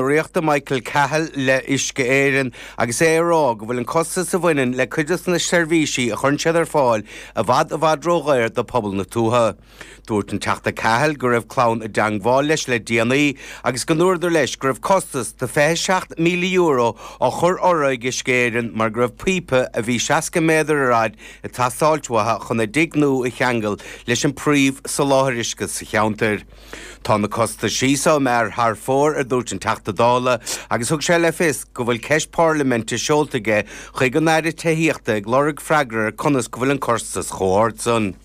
ríochta Michael Cahill le hUisce Éireann agus é ag rá go bhfuil an costas a bhaineann le cuid des na seirbhísí a chuireann siad ar fáil i bhfad i bhfad ródhaor do phobal na tuaithe. Dúirt an Teachta Cahill go raibh clann i dteangmháil leis le déanaí agus go ndúradar leis go raibh costas de €27,000 á chur orthu ag Uisce Éireann mar go raibh píopa a bhí 60 méadar ar fhaid ag teastáilt uathu chun a dtigh nua a cheangal leis an bpríomh soláthair uisce sa cheantair. Tá na costais seo thar fóir, a dúirt an Teachta Dála agus thug sé le fios go bhfuil ceist pairlimente seolta aige chuig an Aire Tithíochta ag lorg freagra ar conas go bhfuil an costas chomh ard san.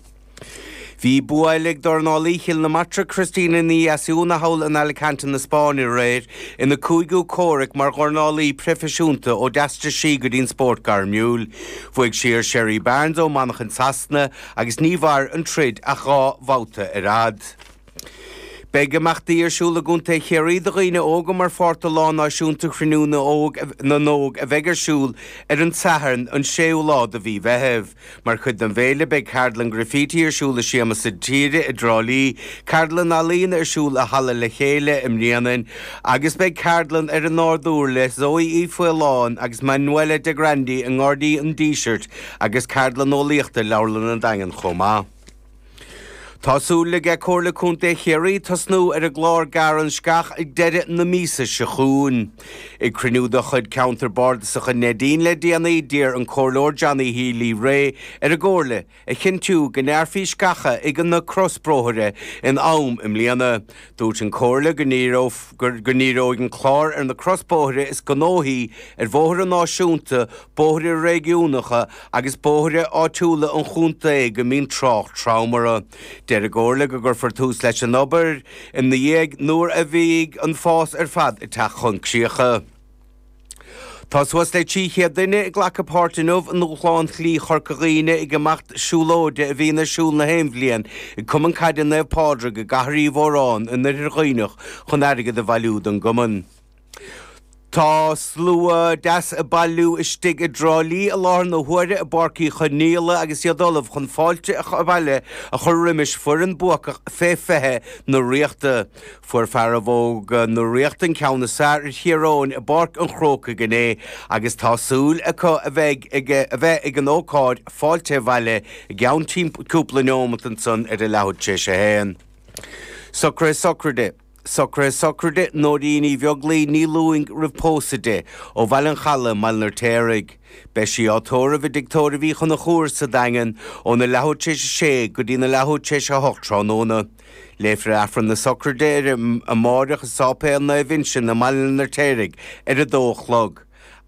Bhí bua eile ag dornálaí Chill na Martra Cristina Ní Dheasúna thall in Alicante na Spáinne aréir ina cúigiú comhrac mar dhornálaí proifisiúnta ó d'aistrigh sí go dtí'n spórt gairmiúil. Bhuaigh sí ar Sherry Barnes ó Mhanchain Shasana agus ní mhair an troid ach dhá bhabhta ar fad. Beidh imeachtaí ar siúl i gContae Chiarraí do dhaoine óga mar pháirt de Lá Náisiúnta Chruinniú na nÓg a bheidh ar siúl ar an tSatharn an 6ú lá de mhí Mheithimh. Mar chuid den bhféile beidh Ceardlann Graffiti ar siúl i Siamsa Tíre i dTrá Lí, Ceardlann Ealaíne ar siúl i Halla Le Chéile i mBréanainn agus beidh ceardlann ar an nádúr le Zoë Uí Fhaoláin agus Manuela De Grandi i nGairdín an Dísirt agus ceardlann eolaíochta i Leabharlann an Daingin chomh maith. Tá súil aige Comhairle Contae Chiarraí tosnú ar an gclár Gearr an Sceach ag deireadh na míosa seo chugainn. Ag cruinniú de chuid Cheantar Bardasach an Neidín le déanaí, d'iarr an Comhairleoir Johnny Healy Rae ar an gComhairle a chinntiú go ngearrfaí sceacha ag na crosbhóithre in am i mbliana. Dúirt an Comhairle go ndíreoidh an clár ar na crosbhóithre is gnóthaí ar bhóithre náisiúnta, Bóithre réigiúnacha agus bóithre áitiúla an chontae go mbíonn trácht trom orthu. Deir an gComhairle go gcuirfear tús leis an obair i nDeireadh Fómhair nuair a bheidh an fás ar fad ag teacht chun críocha. Tá suas le 300 duine ag glacadh páirt inniu i ndúshlán Shlí Chorca Dhuibhne an imeacht siúlóide a bhíonn ar siúl nach aon bhliain ag Cumann Caide Naomh Pádraig i gCathair Uí Mhóráin in Oirthear Dhuibhneach chun airgead a bhailiú don gcumann. Tá slua deas ag bailiú istigh i dTrá Lí i láthair na huaire i bPáirc Uí Chonaíola agus iad ullamh chun fáilte abhaile a chur roimis foireann buacach fé 20 na Ríochta. Fuair fearaibh óga na Ríochta an ceann is fearr ar Thír Eoghain i bPáirc an Chrócaigh inné agus tá súil acu a bheith a bheith ag an ócáid fáilte abhaile i gceann cúpla neomat ansan ar leathuair tar éis 1. Socraithe sochraide. Socruithe sochraide, Nóirín Uí Bheaglaoi, Ní Lúing, roimh pósadh di, ó Bhaile an Chalaidh, i mBaile an Fheirtéaraigh. Beidh sí á tórramh i dtigh tórraimh Uí Chonchúir sa Daingean óna leathuair tar éis a sé go dtína leathuair tar éis a hocht tráthnóna. Léifear Aifreann na sochraide uirthi amáireach i Sáipéal Naomh Uinseann i mBaile an Fheirtéaraigh ar a dó a chlog,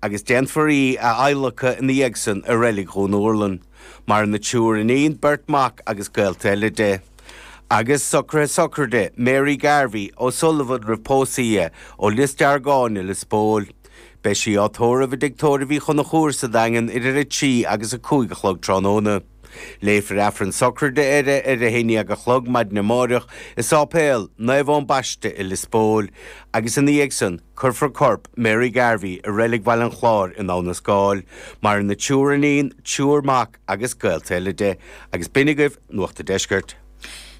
agus déanfar í a adhlacadh ina dhiaidh san i Reilig Dhún Úrlann. Maireann a triúr iníon, beirt mhac agus gaolta eile di. Agus socruithe sochraide, Mary Garvey, O'Sullivan roimh pósadh di, ó Lios Deargáin i Lios Póil. Beidh sí á tórramh i dtigh tórraimh Uí Chonchúir sa Daingean idir a trí agus a cúig a chlog tráthnóna. Léifear Aifreann sochraide uirthi ar a 11 a chlog maidin amáireach i Sáipéal Naomh Eoin Baiste i Lios Póil, agus ina dhiaidh san cuirfear corp Mary Garvey i Reilig Bhaile an Chláir in Abha na Scáil. Maireann a triúr iníon, triúr mac agus gaolta eile di. Agus b'in agaibh Nuacht a' Deiscirt.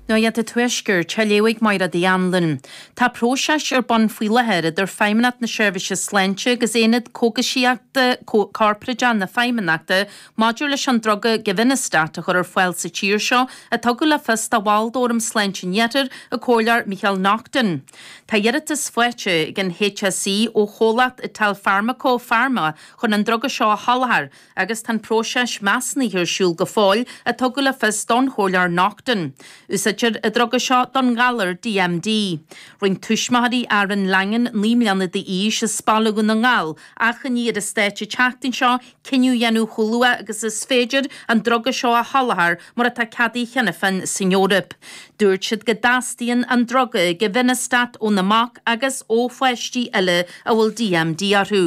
Nuacht a' Tuaiscirt, á léamh ag Máire D. Anluain. Tá próiseas ar bun faoi láthair idir Feidhmeannacht na Seirbhíse Sláinte agus Aonad Cógaisíochta Corporáideach na Feidhmeannachta Maidir leis an druga Givinostat a chur ar fáil sa tír seo, a tugadh le fios do bhall d'Fhóram Sláinte an Iarthair, an comhairleoir Micheál Naughton, tá iarratas faighte ag an HSE ó chomhlacht Italfarmaco Pharma chun an druga seo a sholáthar agus tá an próiseas measúnaithe ar siúl go fóill, a tugadh le fios don chomhairleoir Naughton. Úsáidtear an druga seo don ghalar DMD. Rinne tuismitheoirí Aaron Langan, 9 mbliana d'aois as Baile Dhún na nGall, achainí ar an Stát an tseachtain seo cinneadh a dhéanamh chomh luath agus is féidir an druga seo a sholáthar mar atá ceadaithe cheana féin san Eoraip. Dúirt siad go dteastaíonn an druga, givinostat, óna mac agus ó pháistí eile a bhfuil DMD orthu.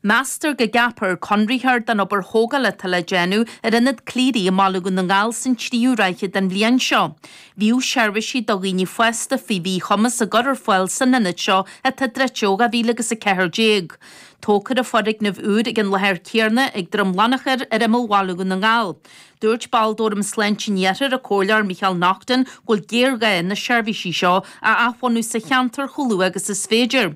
Meastar go gceapfar conraitheoir don obair thógála atá le déanamh ar Ionad Cleary i mBaile Dhún na nGall san tríú ráithe den bhliain seo. Bhíodh seirbhísí do dhaoine fásta faoi mhíchumas á gcur ar fáil san ionad seo atá druidte ó 2014. Tógfar foirgneamh úr ag an láthair céarna ag Droim Lannachair ar imeall Bhaile Dhún na nGall. Dúirt ball d'Fhóram Sláinte an Iarthair, an comhairleoir Micheál Naughton, go bhfuil géarghá na seirbhísí seo a athbhunú sa cheantar chomh luath agus is féidir.